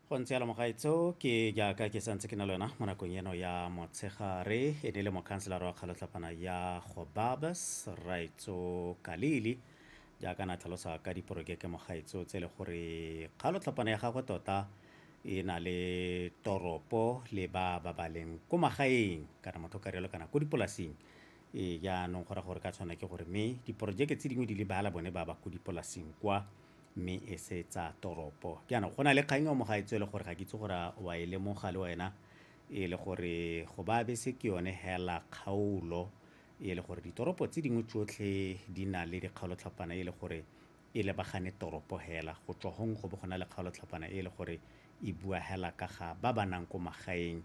go ntse yalo mogaetso ke jaaka ke santse ke na le wena mo nakong eno ya motshegare e ne le mokhanselara wa kgalotlhapana ya gobabas raitso kalili jaaka na tlhalosa ka diporokeke mogaetso tse e le gore kgalotlhapana ya gagwe tota e na le toropo le ba ba ba leng ko magaeng kana motho ka rialo kana ko dipolasing e jaanong go ra gore ka tshwana ke gore mme diporojeke tse dingwe di lebala bone ba ba ko dipolasing kwa mme e se tsa toropo. Jaanong go na le kgang ya mo gaetsho e le gore ga ke itse gore a wa e lemoga le wena e le gore go ba bese ke yone hela kgaolo e le gore ditoropo tse dingwe tsotlhe di na le dikgaolotlhapana e le gore e lebagane toropo hela go tswa gong go bo go na le kgaolotlhapana e le gore e bua hela ka ga ba ba nang ko magaeng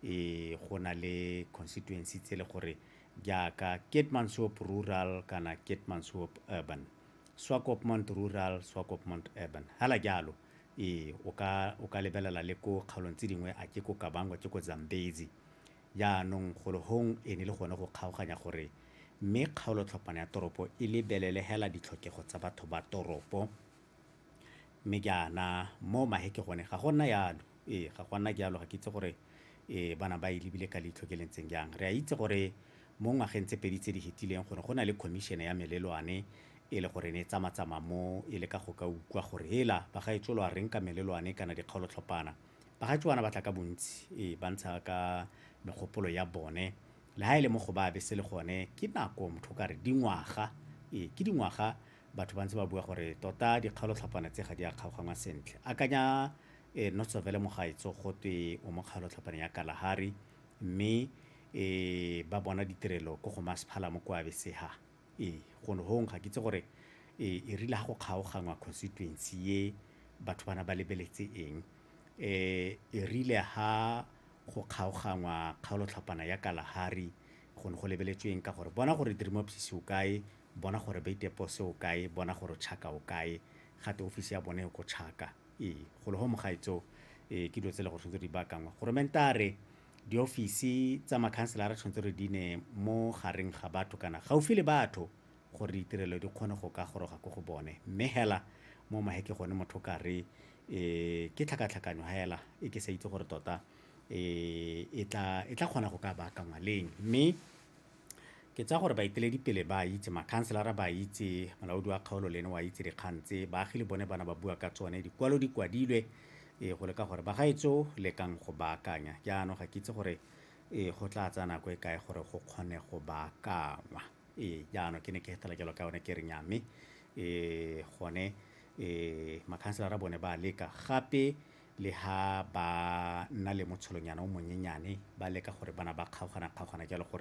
e go na le constituency tse e le gore jaaka Keetmanshoop rural kana Keetmanshoop urban Swakopmund Rural, Swakopmund Urban. Hela jalo, ee, o ka, o ka lebelela le ko kgaolong tse dingwe, a ke ko Kabango, ke ko Zambezi. Jaanong, golo hong e ne le gone go kgaoganya gore mme kgaolotlhopana ya toropo e lebelele hela ditlhokego tsa batho ba toropo. Mme jaana, mo mahe ke gone, ga go nna jalo. Ee, ga go a nna jalo. Ga ke itse gore, ee, ba na ba e lebile ka leitlho ke le ntseng jang. Re a itse gore mo ngwageng tse pedi tse di hetileng gore go na le khomišene ya melelwane e le gore ne e tsamatsama mo e le ka go ka ukwa gore hela bagaetsho lo a reng ka melelwane kana dikgaolotlhopana. Bagaetsho bana ba tla ka bontsi e ba ntsha ka megopolo ya bone le ha e le mo go ba be se le gone ke nako motho o ka re dingwaga e ke dingwaga batho ba ntse ba bua gore tota dikgaolotlhopana tse ga di a kgaogangwa sentle. Akanya e Notsovele Mogaetsho gotwe o mo kgaolotlhopane ya Kalahari, mme e ba bona ditirelo ko go masphala mo kwa Beseha e go ne hong ga ke itse gore e e rile ha go kgaogangwa constituency ye batho bana ba lebeletse eng e e rile ha go kgaogangwa kgaolo tlhapana ya Kalahari go ne go lebeletsweng ka gore bona gore Dirimopsisi o kae bona gore Beitepo se o kae bona gore Chaka o kae gate ofisi ya bone e ko Chaka Ee, go le go mogaetso e, ke dilo tse le go tshwanetse di baakangwa. Goromentare, diofisi tsa makhanselara tshwanetse re di ne mo gareng ga batho kana gaufi le batho gore ditirelo di kgone go ka goroga ko go bone. Mme hela mo maheke gone motho ka re e, ke tlhakatlhakanyo hela e ke sa itse gore tota e, e tla e tla kgona go ka baakangwa leng. Mme Ke tsaya gore baeteledipele ba a itse, makhanselara ba a itse, molaodi wa kgaolo le ene o a itse dikgang tse, baagi le bone bana ba bua ka tsone, dikwalo di kwadilwe e, go leka gore bagaetso lekang go baakanya. Jaanong ga ke itse gore e, go tla tsaya nako e kae gore go kgone go baakangwa. E, jaanong ke ne ke hetela jalo ka yone ke re nya mme e, gone e, makhanselara bone ba leka gape le ha ba nna le motsholonyana o monyenyane ba leka gore bana ba kgaogana-kgaogana jalo gore